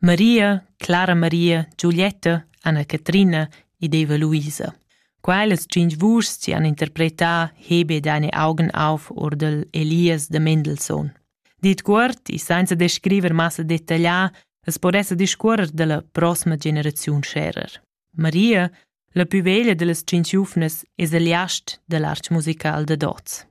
Maria, Clara Maria, Giulietta, Anna Catrina ed Eva Luisa. Quellas tschintg vuschs han interpretà Hebe e deine Augen auf or dal Elias de Mendelssohn. Dit cuort e senza descriver massa dettaglià, as po esser discuorrer dalla prossima generaziun scherer. Maria, la pü veglia dellas tschient giuvnas, es il jast da l'arch musical dad hoz.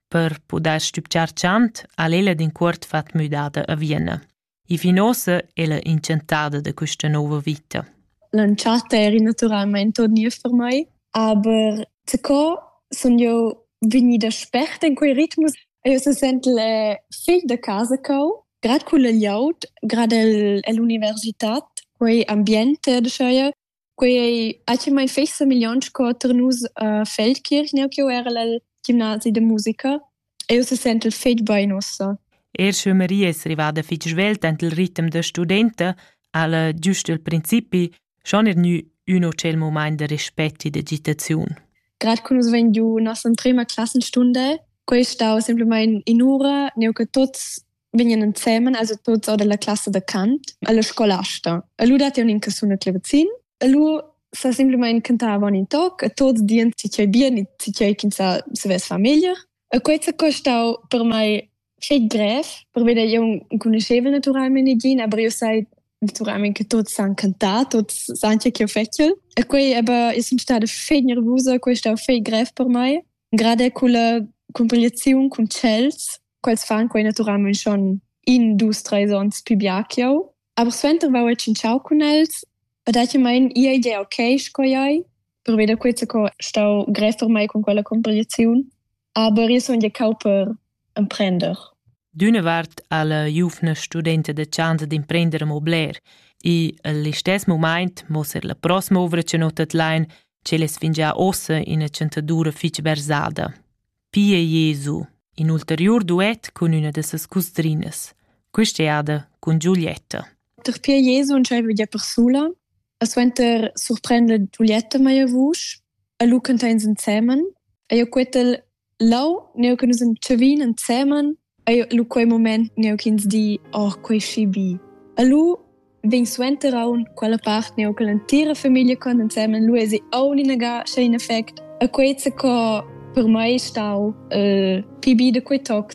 Per pudair stübgiar chant ha'l ella d'incuort fat müdada a Vienna. E fin uossa ella inchantada da quista nouva vita. L'entschatta era naturalmaing turnier per mai, aber sco sun io vegnida sperta in quei ritmus, io se sent le figl da casa cau Grad culla glieud, grad el, ell'universitad, quei ambient dscheu, quei ei actualmein fetg semigliont sco tar nus a Feldkirch, neu ch'jeu erel el gimnasi da musica. Eu se sentel fetg bein ussa. Er sche Maria es rivada fich svelt ant il ritm da studenta, ha'la giust il principi schon er gnü ün hotel momaint da respect e d'agitaziun. Grad cum nus vegn giu nossa emprema classenstunde, quei stau semplamain in ura, neu che tuts vegnan ensemen, also tuts or della classe da Kant, alla scolasta. E lu dat un in casuna clevazin, e lu sa semplamain cantava un in toc, e tots dien si cei bien, si cei chinsa se ves famiglia. E quei s'è costau per mei fetg grev, pervei da jeu enconuschevel naturalmein negin, aber jeu sai naturalmein che tuts san cantar, tuts san che ch'jeu fetschel. E quei aber, io sun stada fetg nervusa, quei è stau fetg grev per mei. Gerade culla cumpigliaziun cun cells, quels fan quei naturalmein schon in, dus, treis onns pi bia ch'jeu. Aber suenter vau e tschintschau cun els e dati mein ia ide ok sco iai, per veder quei co stau grev per mai con quella competiziun, aber io sun gecau per emprender. D'una vart ha la giuvna studenta de chance d'imprender mo bler e all'istess moment mosser la prossima ovra che notat lein, che les fingia ossa in a centadura fich versada. Pia Jesu, in ulteriur duet cun üna da ses cusdrinas, quist'eada cun Giulietta. Der Pia Jesu ntschaiva gia persula, a suenter surprender Giulietta meia vusch, a lu cantains insemen, a jo quetel lau neu che nus entschevin insemen Eir lu quei mument neu ch'ins di «Oh, quei schi bi!» E lu vegn suenter aunc quella part neu che l'entira famiglia con ensemen lu esi aunc inagà scha in effect. E quei zaccò per mei è stau il pi bi da quei toc.